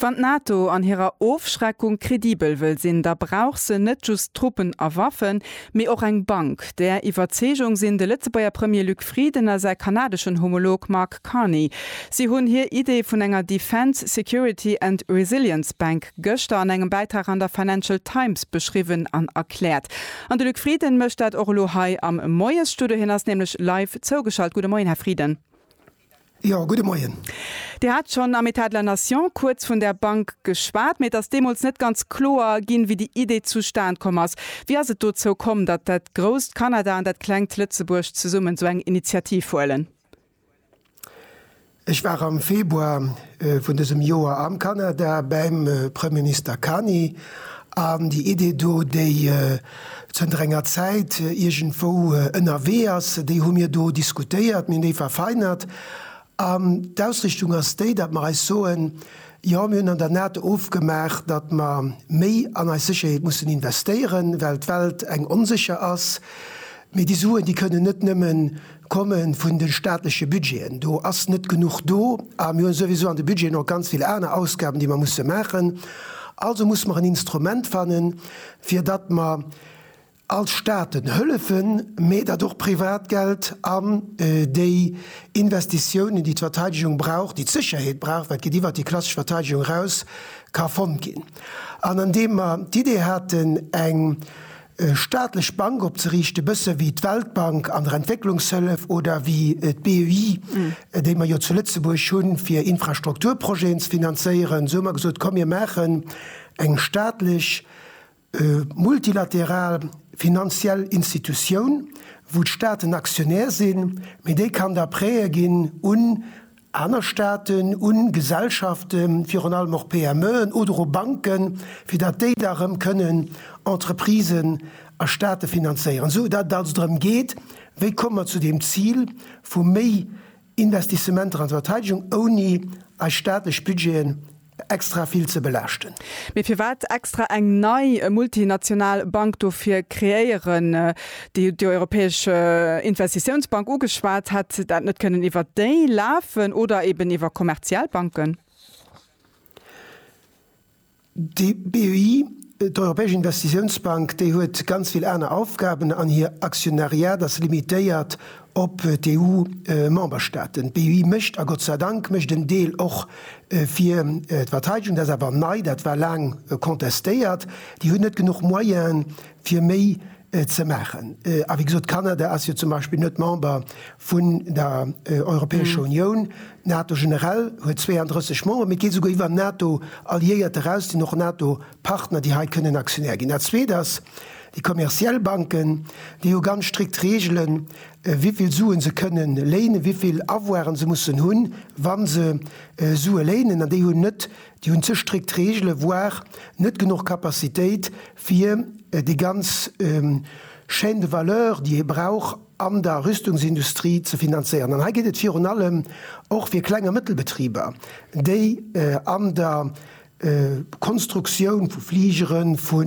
Wann d'NATO an hirer Ofschreckung kredibel wëll sinn, da brauch se net just Truppen a Waffen, mee och eng Bank. Där Iwwerzeegung sinn de Lëtzebuerger Premier Luc Frieden a säi kanadeschen Homolog Mark Carney. Si hunn hir Idee vun enger Defence, Security and Resilience Bank gëschter an engem Bäitrag an der Financial Times beschriwwen an erkläert. An de Luc Frieden mécht dat och elo hei am Moiesstudio. Hien ass nämlech live zougeschalt. Gudde Moien, Här Frieden. Jo, gudde Moien. Dir hat schonn am État de la nation kuerz vun där Bank geschwat, mee et ass deemools net ganz kloer ginn, wéi déi Idee zustan komm ass. Wéi ass et dozou komm, datt dat grousst Kanada an dat klengt Lëtzebuerg zesummen esou eng Initiativ huelen? Ech war am Februar vun dësem Joer am Kanada bäim Premierminister Carney an déi Idee do, déi zënter enger Zäit iergendwou ënnerwee ass, déi hu mir do diskutéiert, mir hunn déi verfeinert an d'Ausrichtung ass déi, datt mer eis soen, Jo, mir hunn an der NATO ofgemaach, datt mer méi an eis Sécherheet mussen investéieren, well d'Welt eng onsécher ass, mee déi Suen, déi kënnen net nëmme komme vun de staatleche Budgeten, do ass net genuch do a mir hu souwisou an de Budgeten och ganz vill aner Ausgaben, déi mer musse maachen. Also musse mer en Instrument fannen, fir datt mer als Staaten hëllefen, mä datt och privat Geld an déi Investitiounen, déi d'Verteidegung brauch, déi d'Sécherheet brauch, wat geet iwwert déi klassesch Verteidegung eraus, ka fonnt ginn. An an deem mer d'Idee haten, eng staatlech Bank opzeriichten, bësse wéi d'Weltbank an der Entwécklungshëllef oder wéi d'BEI, déi mer jo zu Lëtzebuerg hunn, fir Infrastrukturprojeten ze finanzéieren, esou hu mer gesot, komm mir maachen Eng staatlech, multilateral finanziell Institutioun, wou d'Staaten Aktionär sinn, mee déi kann da Prêtë ginn un aner Staaten, u Gesellschaften, virun allem och PMEen, oder u Banken, fir datt déi da erëm kënnen Entreprisen a Staate finanzéieren. Esou datt et also drëm geet, wéi komme mer zu deem Zil vu méi Investissementer an d'Verteidegung, ouni eis staatlech Budgeten extra vill ze belaaschten. Mee firwat extra eng nei multinational Bank dofir kreéieren? Dir hutt déi Europäesch Investitiounsbank ugeschwat. Hätt dat net kënnen iwwer déi lafen oder eben iwwer kommerziell Banken? Déi BEI, d'Europäesch Investitiounsbank, déi huet ganz vill aner Aufgaben an hir Aktionariat ass limitéiert op d'EU-Memberstaaten. D'EU mécht, a Gott sei Dank, mécht en Deel och fir d'Verteidegung. Dat ass awer nei, dat war laang contestéiert. Déi hunn net genuch Moyenen, fir méi ze maachen. A wéi gesot, Kanada ass jo zum Beispill net Member vun der Europäescher Unioun. D'NATO generell huet 32 Member, mee et geet esouguer iwwer NATO-Alliéiert eraus, déi nach NATO Partner, déi hei kënnen Aktionär ginn. Dat Zweet ass, déi kommerziell Banken, déi hu ganz strikt Reegelen, wivill Suen se kënnen léinen, wivill Avoiren se mussen hunn, wa se Sue léinen. An déi hunn net, déi hunn ze strikt Reegelen, voire net genuch Capacitéit, fir déi ganz Chaîne de valeur, déi ee brauch an der Rüstungsindustrie, ze finanzéieren. An hei geet et virun allem och fir Kleng a Mëttelbetriber, déi an der Konstruktioun vu Fligeren, vu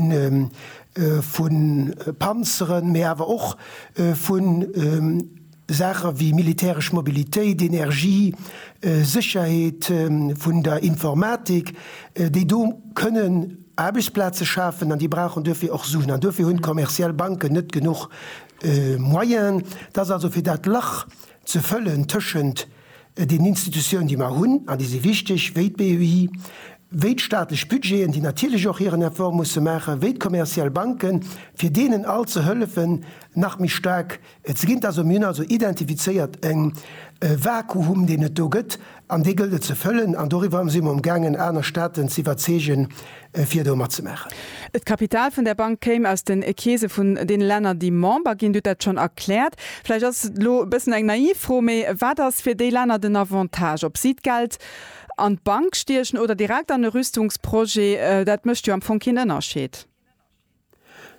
Panzeren, mee awer och vu Saache wéi militäresch Mobilitéit, Energie, Sécherheet, vun der Informatik, déi do kënnen Aarbechtsplaze schafen, an déi brauchen duerfir och Suen. An duerfir hunn d'kommerziell Banken net genuch Moyenen. Et ass also fir dat Lach ze fëllen tëschent Et een Institutioun, déi mer hunn an déi si wichteg, wéi d'BEI, wéi d'staatlech Budgeten, déi natierlech och hiren Effort musse maachen, wéi d'kommerziell Banken, fir deenen all ze hëllefen, nach méi staark ze ginn. Dass mir hunn also identifizéiert e Vakuum, deen et do gëtt, an dee gëllt et ze fëllen. An doriwwer si mer amgaangen, aner Staaten ze iwwerzeegen, fir do matzemaachen. D'Kapital vun där Bank kéim aus den Keese vun deene Länner, déi Member ginn. Dir hutt dat schonn erkläert. Vläicht ass et elo e bëssen eng naiv Fro, mee wat ass fir déi Länner den Avantage, ob si d'Geld an d'Bank stiechen oder direkt an e Rüstungsprojet? Dat mécht jo am Fong keen Ënnerscheed.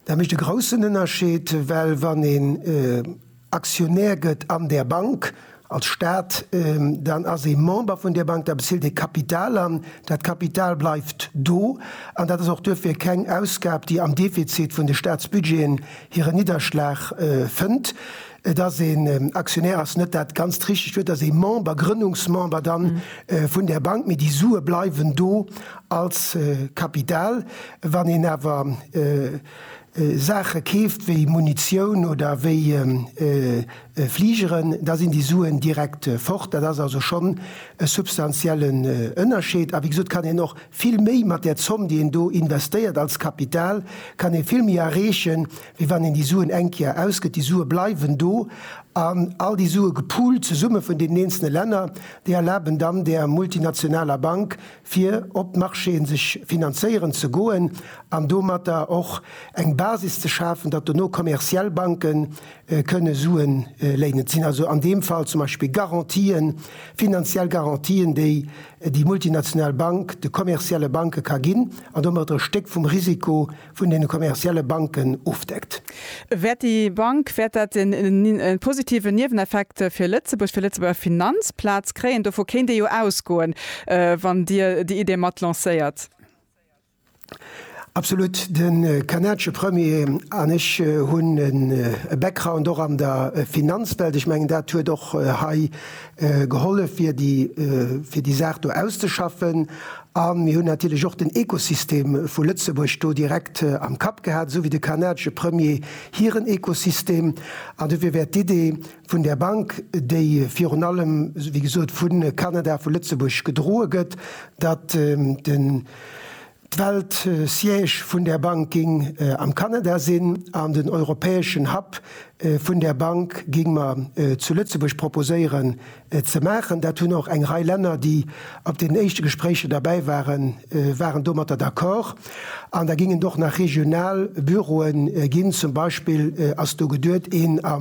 Dat mécht e groussen Ënnerscheed, well wann een Aktionär gëtt an där Bank als Staat, dann ass ee Member vun där Bank, da bezilt ee Kapital an. Dat Kapital bleift do an dat ass och duerfir keng Ausgab, déi am Defizit vun de Staatsbudgeten hiren Nidderschlag fënnt. Et ass een Aktionär ass net dat ganzt richtegt Wuert, et ass ee Member, Grënnungsmember dann vun där Bank, mee déi Sue bleiwen do als Kapital. Wann een awer Saache keeft wéi Munitioun oder wéi Fligeren, da sinn déi Suen direkt fort. Dat ass also schonn e substantiellen Ënnerscheed. A wéi gesot kann een och vill méi mat där Zomm, déi een do investéiert als Kapital, kann ee vill méi erreechen, wéi wann een déi Suen eng Kéier ausgëtt. Déi Sue bleiwen do an all déi Sue gepoolt zesumme vun deenen eenzele Länner, déi erlaben dann där multinationaler Bank, fir op d'Marchéen sech finanzéieren ze goen an domatter och eng Basis ze schafen, datt dono kommerziell Banke kënne Sue léinen. Et sinn also an deem Fall zum Beispill Garantien, finanziell Garantien, déi déi multinational Bank de kommerzielle Banke ka ginn an domatter e Stéck vum Risiko vun den kommerzielle Banken ofdeckt. Wäert déi Bank, wäert dat en positiven Nieweneffekt fir Lëtzebuerg, fir Lëtzebuerger Finanzplaz kréien? Dovu kéint ee jo ausgoen, wann Dir déi Idee mat lancéiert. Absolut. De kanadesche Premier an ech hunn e Background och an der Finanzwelt. Ech mengen, dat huet och hei gehollef fir déi fir déi Saach do auszeschaffen. A mir hunn natierlech och den Ekosystem vu Lëtzebuerg do direkt am Kapp gehat, esou wéi de kanadesche Premier hiren Ekosystem. An dofir wär d'Idee vun där Bank, déi virun allem, wéi gesot, vu Kanada, vu Lëtzebuerg gedroe gëtt, datt den Well d'Siège vun där Bank géing am Kanada sinn an den europäeschen Hub vun där Bank géing mer zu Lëtzebuerg proposéieren ze maachen, dat hunn och eng Rei Länner, déi op deenen éischte Gespréicher derbäi waren, waren domatter d'accord. An da géingen et och nach regional Büroe ginn. Zum Beispill ass do geduet, een a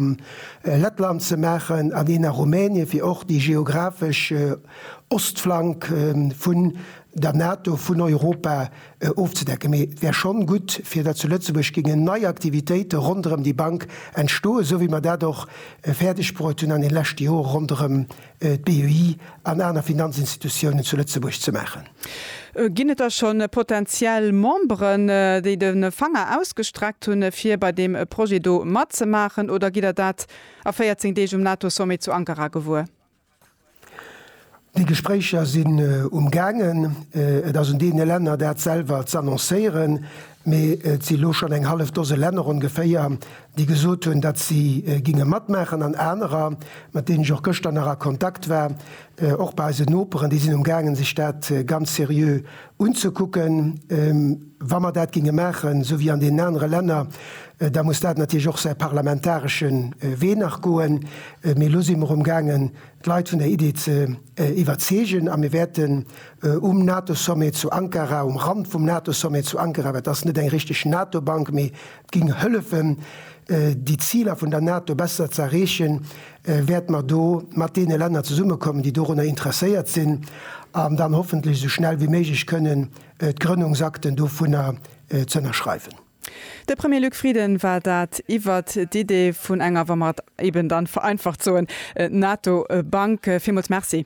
Lettland ze maachen an een a Rumänien, fir och déi geographesch Ostflank vu der NATO, vun Europa ofzedecken. Mee et wär schonn gutt, fir datt zu Lëtzebuerg géingen nei Aktivitéite ronderëm déi Bank entstoen, esou wéi mer dat och fäerdeg bruet hunn an den leschte Jore ronderëm d'BEI an aner Finanzinstitutiounen zu Lëtzebuerg ze maachen. Ginn et da scho potentiell Memberen, déi de Fanger ausgestreckt hunn, fir bei deem Projet do matzemaachen, oder gitt Der dat a 14 Deeg um NATO-Sommet zu Ankara gewuer? Déi Gespréicher sinn um gaangen. Et ass un deene Länner dat selwer z'annoncéieren, mee et si lo schonn eng hallef Dose Länner ongeféier, déi gesot hunn, datt si géinge matmaachen an anerer, mat deenen ech och gëschter nach a Kontakt war, och bei eisen Noperen, déi sinn um gaangen sech dat ganz seriö unzekucken, wa mer dat géinge maachen, esou wéi an deenen anere Länner, da muss dat natierlech och säi parlamentaresche Wee nach goen. Mee elo si mer amgaangen, d'Leit vun der Idee ze iwwerzeegen, a mir wäerten um NATO-Sommet zu Ankara, um Rand vum NATO-Sommet zu Ankara, well et ass net eng richteg NATO-Bank, mee Géing hëllefen, déi Ziler vun der NATO besser ze erreechen, wäerte mer do mat deene Länner zesummekommen, déi dorunner interesséiert sinn, an dann hoffentlech esou schnell wéi méiglech kënnen d'Grënnungsakten dovunner ze ënnerschreiwen. De Premier Luc Frieden war dat iwwert d'Idee vun enger, wa mer et eeben dann vereinfacht soen, NATO-Bank. Villmools Merci.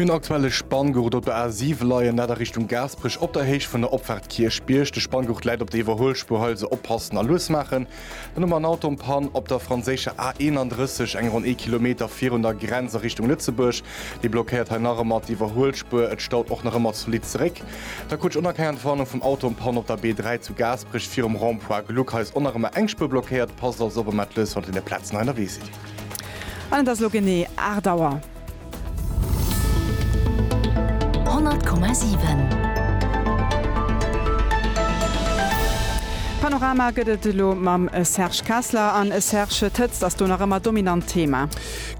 Mir hunn aktuell e Spanngurt op der A7 leien, dat a Richtung Gaasperech op der Héicht vun der Opfaart Kierchbierg. De Spanngurt läit op der Iwwerhuelspuer hei, also oppassen a lues maachen. Dann hu mer en Auto en Panne op der franséischer A31, eng ronn ee Kilometer virun der Grenz a Richtung Lëtzebuerg. Dee blockéiert hei nach ëmmer d'Iwwerhuelspuer, et staut och nach ëmmer zolidd zeréck. Da krut ech onerkennert d'Warnung vum Auto en Panne op der B3 zu Gaasperech virum Rond-Point Gluck. Hei ass och nach ëmmer eng Spuer blockéiert, passt also op, emmer d'Lues, wann der déi Plazen hei ënnerwee sidd. An et ass elo genee 8 Auer. 100,7. Panorama gëtt et elo mam Serge Kessler. An Serge, d'Hëtzt ass do nach ëmmer dominant Thema.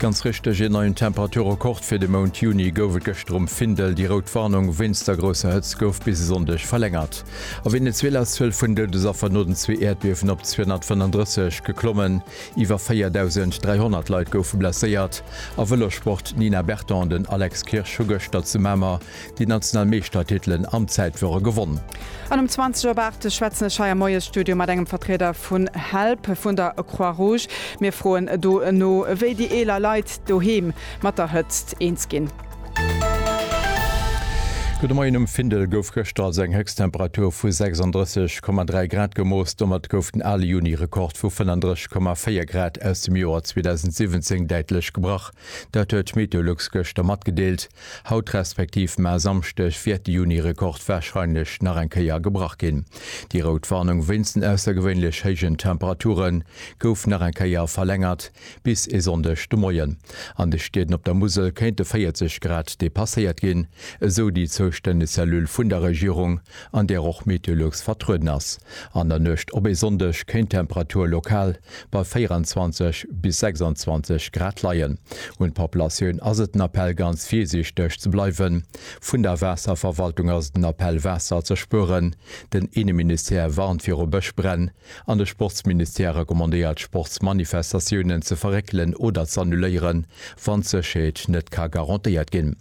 Ganz richteg, een neien Temperaturrekord fir de Mount Juni gouf et gëschter um Findel. Déi rout Warnung wéinst der grousser Hëtzt gouf bis e Sonndeg verlängert. A Venezuela ass d'Zuel vun Doudesaffer no den zwee Äerdbiewen op 235 geklommen. Iwwer 4.300 Leit goufe blesséiert. A Vëlossport, D'Nina Berton an den Alex Kirsch hu gëschter zu Mamer déi national Meeschtertitelen am Zäitwürre gewonn. An um 20 op 8 schwätzen ech hei am Moiesstudio mat engem Vertrieder vun help, vun der Croix Rouge. Mir froen do no, wéi déi eeler Leit doheem mat der Hëtzt eens ginn. Gudde Moien, Um Findel gouf gëschter also eng Héchsttemperatur vu 36,3 Grad gemooss. Domat gouf den ale Juni-Rekord vu 35,4 Grad aus dem Joer 2017 däitlech gebrach. Dat huet d'Meteolux gëschter matgedeelt. Haut, respektiv mar Samschdeg, wäert de Juni-Rekord warscheinlech nach eng Kéier gebrach ginn. Déi rout Warnung wéinst den aussergewéinlech héijen Temperature gouf nach eng Kéier verlängert. Bis e Sonndeg de Moien. An de Stieden op der Musel kéinte 40 Grad depasséiert ginn, esou déi zoustänneg Cellule vun der Regierung, an där och Meteolux vertrueden ass. An der Nuecht op e Sonndeg kéint d'Temperatur lokal bei 24 bis 26 Grad leien. Un d'Populatioun ass et den Appell ganz virsiichteg ze bleiwen. Vun der Waasserverwaltung ass et en Appell Waasser ze spueren. Den Inneministère warnt viru Bëschbränn. An de Sportsministère recommandéiert Sportsmanifestatiounen ze verréckelen oder z'annuléieren, wann d'Sécherheet net ka garantéiert ginn.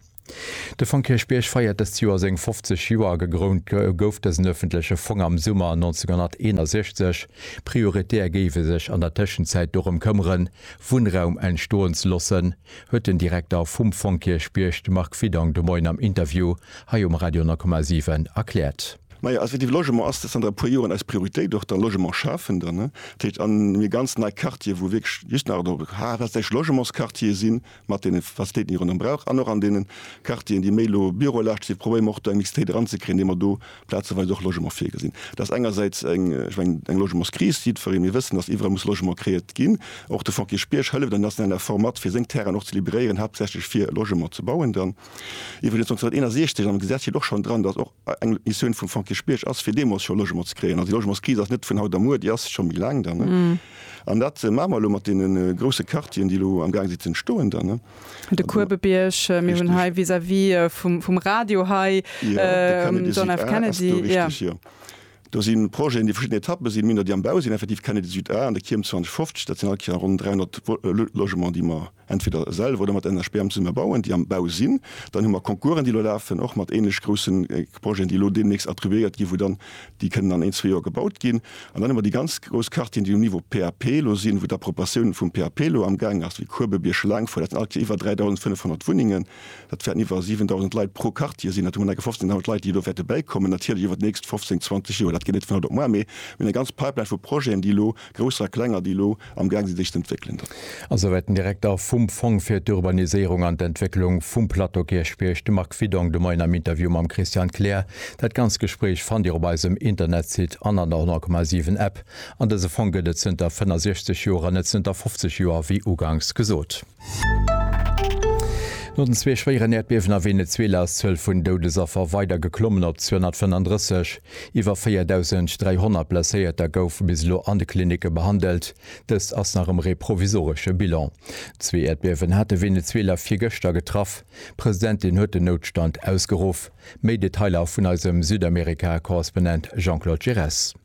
De Fong Kierchbierg feiert dëst Joer seng 50 Joer. Gegrount gouf dësen ëffentleche Fong am Summer 1961. Prioritär géif e sech an der Tëschenzäit dorëm këmmeren, Wunnraum entstoen ze loossen, huet den Direkter vum Fong Kierchbierg, de Marc Widong, de Moien am Interview hei um Radio 9,7 erkläert. Majo, effektiv, Logement ass zanter e puer Joren eis Prioritéit, och da Logement schafen dann, ne? Dat heescht, an mir ganz nei Quartiere, wou wierklech just nach do haaptsächlech Logementsquartiere si mat deene Facilitéiten, déi ee ronderëm brauch, an och an deene Quartieren, déi méi elo bürolaschteg sinn, probéiere mer och do eng Mixitéit eranzekréien, indem mer do plazeweis och Logement virgesinn. Dat ass engersäits eng, ech mengen, eng Logementskris, jiddweree, mir wëssen, datt iwwerall muss Logement kreéiert ginn. Och de Fonds Kirchbierg hëlleft an deem nationalen Effort mat, fir seng Terrainen och ze libéréieren, haaptsächlech fir Logement ze bauen dann. Iwwregens 1961 am Gesetz steet och schonn dran, datt och eng Missioun vum Frank Kirchbierg ass, fir deemools scho Logement ze kréien. Also déi Logementskris ass net vun haut a muer, déi ass scho méi laang da. An dat maache mer elo mat deene grousse Quartieren, déi elo am Gaang si ze entstoen da. De Kuebebierg, mir hunn hei vis-à-vis vum Radio hei den John F. Kennedy. Ass do richteg, jo. Do si Projeten, déi verschidden Etappe sinn, méi nach déi am Bau sinn, effektiv Kennedy Süd A an de Kierm 2050, dat sinn all Kéier ronn 300 Logements, déi mer entweder selwer oder mat enger SPEAM zesumme bauen, déi am Bau sinn, dann hu mer Concoursen, déi elo lafen, och mat ähnlech grousse Projeten, déi elo deemnächst attribuéiert ginn, wou dann déi kënnen an een, zwee Joer gebaut ginn. An dann hu mer déi ganz grouss Quartieren, déi um Niveau PAP elo sinn, wou d'Appropriatioun vum PAP elo amgaang ass, wéi Kuebebierg, Schlaangefouer, dat sinn allequer iwwer 3.500 Wunnengen, dat wäerten iwwer 7.000 Leit pro Quartier sinn, dat hu mer allequer 15.000 Leit, déi elo wäerte bäikommen, natierlech iwwer d'nächst 15, 20 Joer, dat geet net vun haut op muar, mee mir hunn eng ganz Pipeline vu Projeten, déi elo Grousser a klenger, déi elo am Gaang sinn sech z'entwéckelen. A souwäit den Direkter vum Fong fir d'Urbaniséierung an d'Entwécklung vum Plateau Kierchbierg, de Marc Widong, de Moien am Interview mam Christian Kleer. Dat ganzt Gespréich fannt Dir op eisem Internetsite an an der 100,7 App. An dëse Fong gëtt et zënter 65 Joer, an net zënter 50 Joer, wéi uganks gesot. No den zwee schwéieren Äerdbiewen a Venezuela ass d'Zuel vun Doudesaffer weider geklommen op 235. Iwwer 4.300 Blesséierter goufe bis elo an de Klinicke behandelt. Dëst ass nach ëmmer ee provisoresche Bilan. Zwee Äerdbiewen hate Venezuela virgëschter getraff. D'Presidentin huet den Noutstand ausgeruff. Méi Detailer vun eisem Südamerika-Korrespondent Jean-Claude Giresse.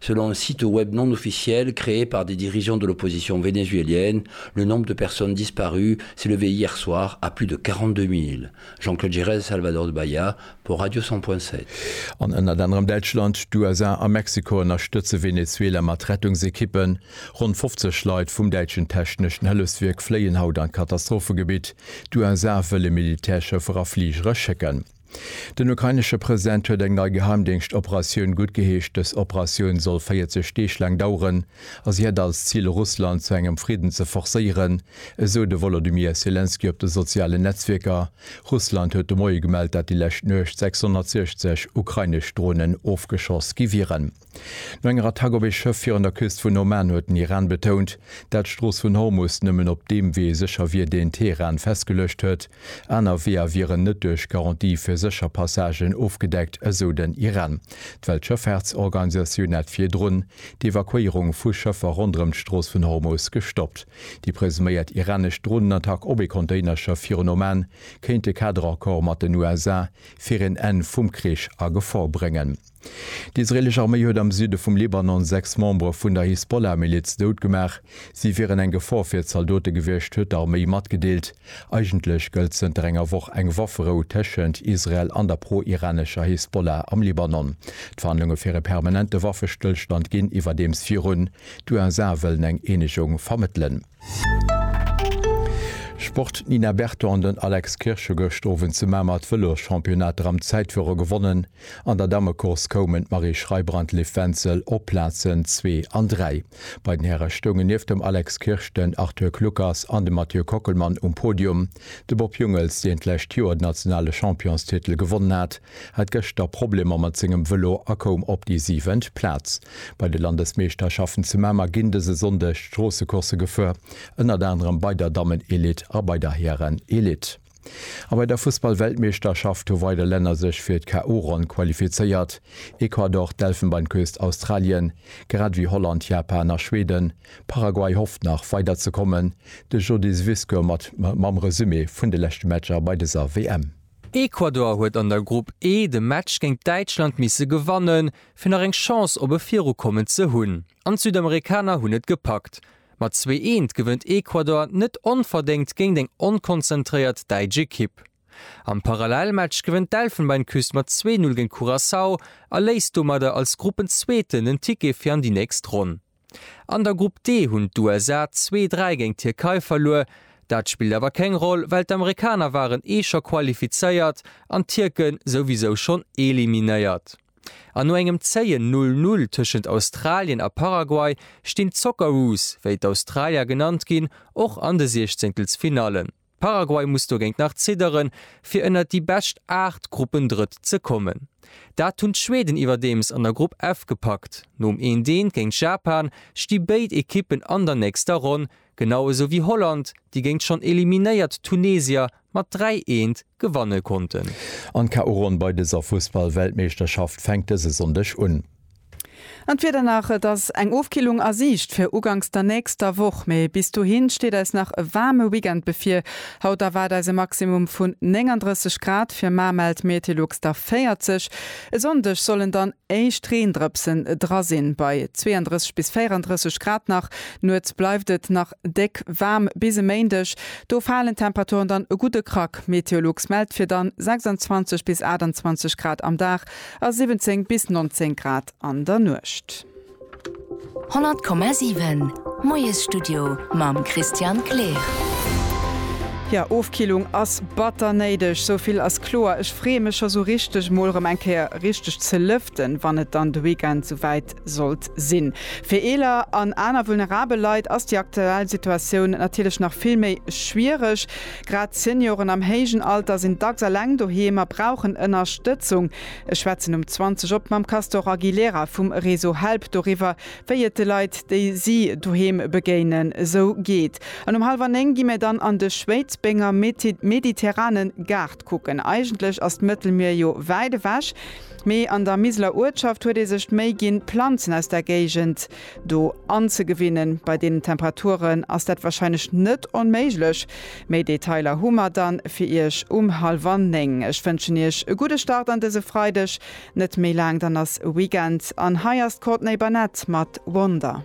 Selon un site web non officiel créé par des dirigeants de l'opposition vénézuélienne, le nombre de personnes disparues s'est levé hier soir à plus de 42 000. Jean-Claude Giresse, Salvador de Bahia pour Radio 100.7. An ënnert anerem Däitschland, d'USA a Mexiko ënnerstëtze Venezuela mat Rettungsekippen. Ronn 50 Leit vum däitschen techneschen Hëllefswierk fléien haut an d'Katastrophegebitt. D'USA wëlle Militärschëffer a Fligere schécken. Den ukrainesche President huet eng nei Geheimdéngschtoperatioun guttgeheescht. Dës Operatioun soll 40 Deeg laang daueren a si hätt als Zil, Russland zu engem Fridden ze forcéieren, esou de Wolodymyr Selenskyj op de sozialen Netzwierker. Russland huet de Moie gemellt, dat déi lescht Nuecht 660 ukrainesch Dronen ofgeschoss gi wieren. No enger Attack op ee Schëff virun der Küst vun Oman huet den Iran betount, dat d'Strooss vun Hormus nëmmen op deem Wee sécher wier, deen Teheran festgeluecht huet. Aner Weeër wieren net duerch Garantie fir sécher Passagen ofgedeckt, esou den Iran. D'Weltschëffaartsorganisatioun hat virdrun d'Evakuéierung vu Schëffer ronderëm d'Strooss vun Hormus gestoppt. Déi presuméiert iranesch Dronenattack op ee Containerschëff virun Oman kéint de Kaderaccord mat den USA fir een Enn vum Krich a Gefor bréngen. D'israelesch Arméi huet am Süde vum Libanon sechs Membere vun der Hisbollah-Miliz dout gemaach. Si wieren eng Gefor fir d'Zaldote gewiescht, huet d'Arméi matgedeelt. Eigentlech gëllt zënter enger Woch eng Wafferou tëschent Israel an der pro-iranescher Hisbollah am Libanon. D'Verhandlunge fir e permanente Waffestëllstand ginn iwwerdeems virun. D'USA wëllen eng Eenegung vermëttelen. Sport, D'Nina Berton an den Alex Kirsch hu gëscht Owend zu Mamer d'Vëloschampionnat Dram Zäitfuere gewonnen. An der Dammecourse koumen d'Marie Schreiber an d'Liv Wenzel op d'Plazen zwee an dräi. Bei den Häre stoungen nieft dem Alex Kirsch den Arthur Kluckers an de Mathieu Kockelmann um Podium. De Bob Jungels, deen d'lescht Joer den nationale Championstitel gewonnen hat, hat gëschter Problemer mat sengem Vëlo a koum op déi siwent Plaz. Bei de Landesmeeschterschaften zu Mamer ginn dëse Sonndeg d'Stroossecoursse gefuer, ënnert anerem bei der Dammen-Elite a bei der Hären-Elite. A bei der Fussball-Weltmeeschterschaft hu weider Länner sech fir d'KO-Ronn qualifizéiert, Ecuador, d'Elfenbeinküst, Australien, grad ewéi Holland, Japan a Schweden. Paraguay hofft nach weider ze kommen. De Jody Zbyszko mat mam Resumé vun de leschte Matcher bei dëser WM. Ecuador huet an der Grupp E de Match géint Däitschland misse gewannen, fir nach eng Chance op e Virukommen ze hunn, an d'Südamerikaner hunn et gepackt. Mat zwee eent gewënnt Ecuador net onverdéngt géint eng onkonzentréiert däitsch Ekipp. Am Parallelmatch gewënnt d'Elfenbeinküst mat zwee Null géint Curaçao a léisst domadder als Gruppenzweeten den Ticket fir an déi nächst Ronn. An der Grupp D hunn d'USA zwee, dräi géint d'Tierkei verluer. Dat spillt awer keng Roll, well d'Amerikaner waren ee scho qualifizéiert an d'Tierke souwisou schonn eliminéiert. An no engem zéien Null Null tëschent Australien a Paraguay stinn d'Socceroos, wéi d'Australier genannt ginn, och an de Siechzéngtelsfinallen. Paraguay muss dogéint nach zidderen, fir ënnert déi bescht 8 Gruppendrëtt ze kommen. Dat hunn d'Schweden iwwerdeems an der Grupp F gepackt. Nom Eent-Eent géint Japan sti béid Ekippen an der nächster Ronn, genau esou wéi Holland, déi géint schonn eliminéiert Tunesier mat 3, Eent gewanne konnten. An d'KO-Ronn bei dëser Fussball-Weltmeeschterschaft fänkt dëse Sonndeg un. An d'Wieder nach, Et ass eng Ofkillung a Siicht fir uganks der nächster Woch, mee bis dohi steet eis nach e waarme Weekend bevir. Haut erwaart eis e Maximum vun 39 Grad, fir mar mellt Metelux der 40. E Sonndeg sollen dann éischt Reendrëpsen dra sinn, bei 32 bis 34 Grad nach. Nuets bleift et nach déck waarm bis e Méindeg, do falen d'Temperaturen dann e gudde Krack. Meteolux mellt fir dann 26 bis 28 Grad am Dag. A 17 bis 19 Grad an der Nuecht. 100,7 Moiesstudio mam Christian Kleer. Jo, Ofkillung ass batter néideg, sou vill ass kloer. Ech freeë mech scho sou richteg, mol rëm eng Kéier richteg ze lëften, wann et dann de Weekend sou wäit Sollt sinn. Fir eeler an aner vulnerabel Leit ass déi aktuell Situatioun natierlech nach vill méi schwiereg. Grad Senioren am héijen Alter sinn dacks eleng doheem a brauchen Ënnerstëtzung. Ech schwätzen um 20 op mam Castor Aguilera vum Réseau Help doriwwer, wéi et de Leit, déi si doheem begéinen, esou geet. An um hallwer néng gi mir dann an de Schwéidsbenger Mediterrane Gaart kucken. Eigentlech ass d'Mëttelmier jo wäit ewech, Mee an der Miseler Uertschaft huet ee sech d'Méi ginn, Planzen aus der Géigend do anzegewinnen. Bei deenen Temperaturen ass dat wahrscheinlech net onméiglech. Méi Detailer hu mer dann fir Iech um hallwer néng. Ech wënschen Iech e gudde Start an dëse Freideg. Net méi laang, dann ass Weekend an hei ass d'Courtney Barnett mat Wonder.